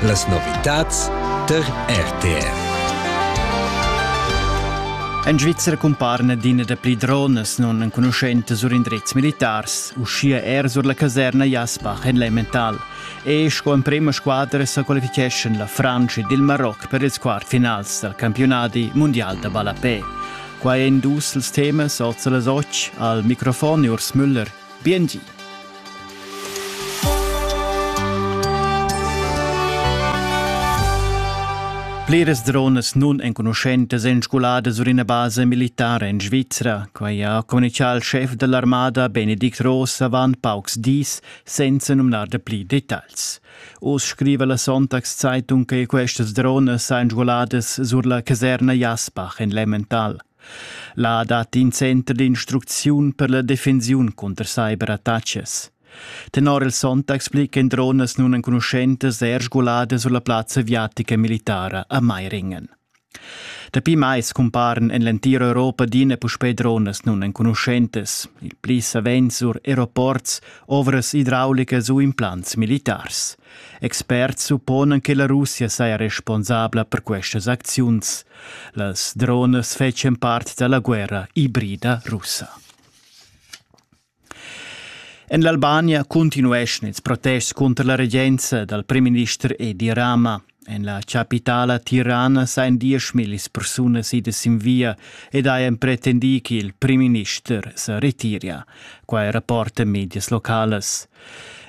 Las novitads tar RTR. En Svizra cumparan adina da pli dronas non enconuschentas sur indrezs militars, uschia er sur la caserna Jasbach en Lemmental. E sco emprima squadra sa qualificheschan la Frantscha ed il Maroc per ils quartfinals dal campionadi mondial da ballapè. Quai èn dus ils temas oz a las 8. Al microfon Urs Müller. Biengi. Pliras dronas nun enconuschentas èn sguladas sur ina basa militara en Svizra. Quai ha communitgà il schef da l'armada Benedict Ross avant paucs dis, senza numnar da pli detagls. Oz scriva la Sonntagszeitung che questas dronas sajan sguladas sur la caserna Jasbach en Lemmental. Là dat in center d'instrucziun per la defensiun cunter cyberattacas. Tenor il Sonntag explican dronas nun enconuschentas er sguladas sulla plazza aviatica militara a Meiringen. Dapi mais cumparan en l'entira Europa adina puspè dronas nun enconuschentas, il pli savens sur aeroports, ovras idraulicas u implants militars. Experts supponan che la Russia saja responsabla per questas acziuns. Las dronas fetschan part da la guerra ibrida russa. En l'Albania cuntinueschan ils protests cunter la regenza dal primminister Edi Rama. En la chapitala Tirana sajan dieschmillis persunas idas sin via ed hajan pretendì ch'il primminister sa retiria. Quai rapporta medias localas.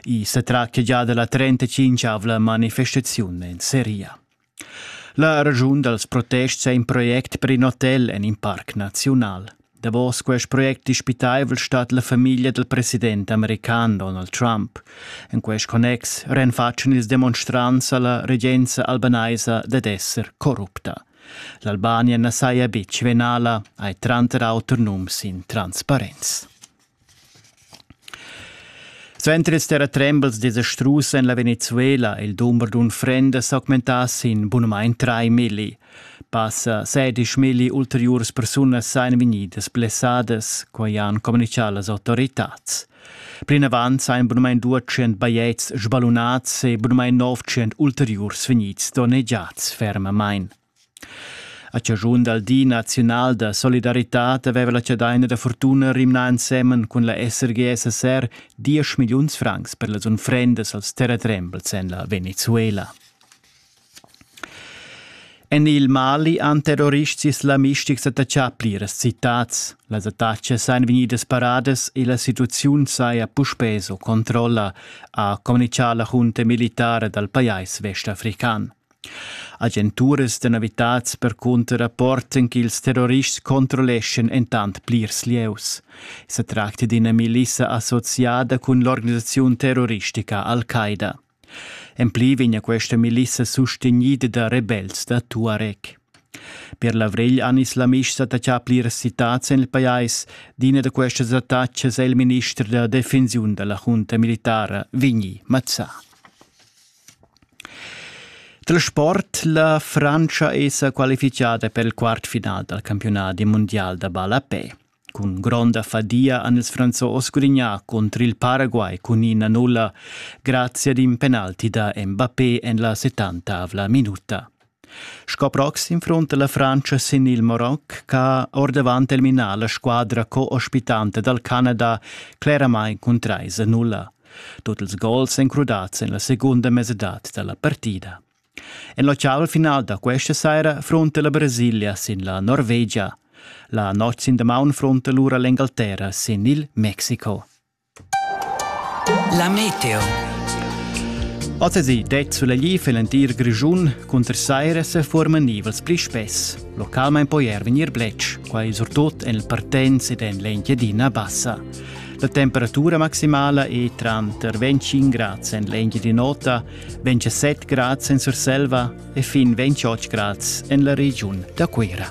I sa traccia già da la 35-avla manifestaziun en Seria. La ragiun dals protests è in project per in hotel en in parc naziunal. Davos quest project dispitaivel stat la famiglia del president american Donald Trump. En quest connex renfatschen ils demonstrants alla regenza albanaisa dad esser corrupta. L'Albania na saja betg venala, hai tranter auter nums in transparenz. Suenter ils terratrembels desastrus en la Venezuela è il dumber d'unfrendas augmentà sin bunamain trai milli. Passa sedisch milli ulteriuras persunas sajan vegnidas blessadas, quai han communitgà las autoritads. Plinavant sajan bunamain 200 bajetgs sballunads e bunamain 900 ulteriurs vegnids donnegiads fermamain. A chaschun dal Di naziunal da solidaritad aveva la chadaina da fortuna rimnà ensemen cun la SRGSSR diesch milliuns francs per las unfrendas als terratrembels en la Venezuela. En il Mali han terrorists islamistics attaccà pliras citads. Las attacas èn vegnidas paradas e la situaziun saja puspè sco controlla, ha communitgà la junta militara dal pajais vestafrican. Agenturas da navitats percunter rapportan ch'ils terrorists controlleschan entant plirs lieus. Sa tracta d'ina milissa associada cun l'organisaziun terroristica Al-Qaida. En pli vegn questa milissa sustegnida da rebels da Tuareg. Per l'avrigl han islamists attaccà pliras citads en il pajais. D'ina da questas attacas è il minister da defensiun da la junta militara, Vigni Mazzà. Dal sport la Frantscha è sa qualifitgada per il quartfinal dal campiunat mundial da ballapè. Cun gronda fadia han ils Franzos sgurignà contro il Paraguay cun ina nulla grazie ad in penalti da Mbappé en la 70 minuta. Sco proxim frunta la Frantscha sin il Maroc ch'ha ordavant eliminà la squadra co-ospitanta dal Canada cleramain cun trais a nulla. Tut ils gols èn crudads en la segunda mesadad da la partida. En l'ocean final da questa saira frunta la Brasilia sin la Norvegia. La notg sin damaun frunta lura l'Engalterra sin il Mexico. La meteo. Oz det sulegli für l'entir Grischun cunter saira se forman nivels pli spess. Localment poi er venir blec, quai surtut en il Partenz ed en l'Engiadina Bassa. La temperatura maximala è tranter 25 grad en l'Engiadin'Ota, 27 grad en Surselva e fin 28 grad en la regiun da Cuira.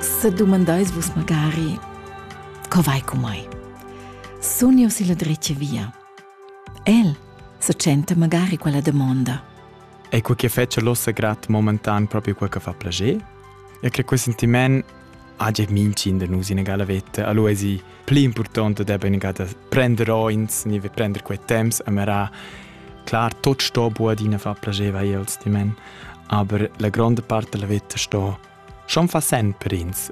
Sa dumandais vus magari, co vai cu mai? Sun io si la dretga via? El se tschenta magari quella domanda. E quel che fece l'ossa grat momentan proprio quel che fa plager? E che quel sentiment hagia minchin de nus in egala vetta, allora è sì pli importante de ben da prender oins, ni prender quei temps a mera. Clar, tot sto buadina fa plager vai als di men, aber la grande parte della vetta sto schon fa sempre ins.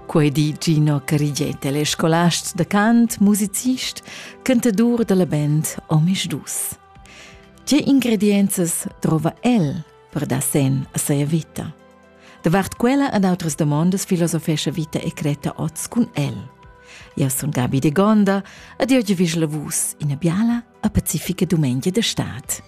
Quei di Gino Cariget, el è scolast da cant, musicist, cantadur della band Omis Dus. Tge ingredienzas trova el per dar sen a seia vita? Davart quella ad outras domondas filosofescha vita e creta oz cun el. Eu sun Gabi de Gonda, ad oggi vis la vus ina biala a pacifica dumengia de stad.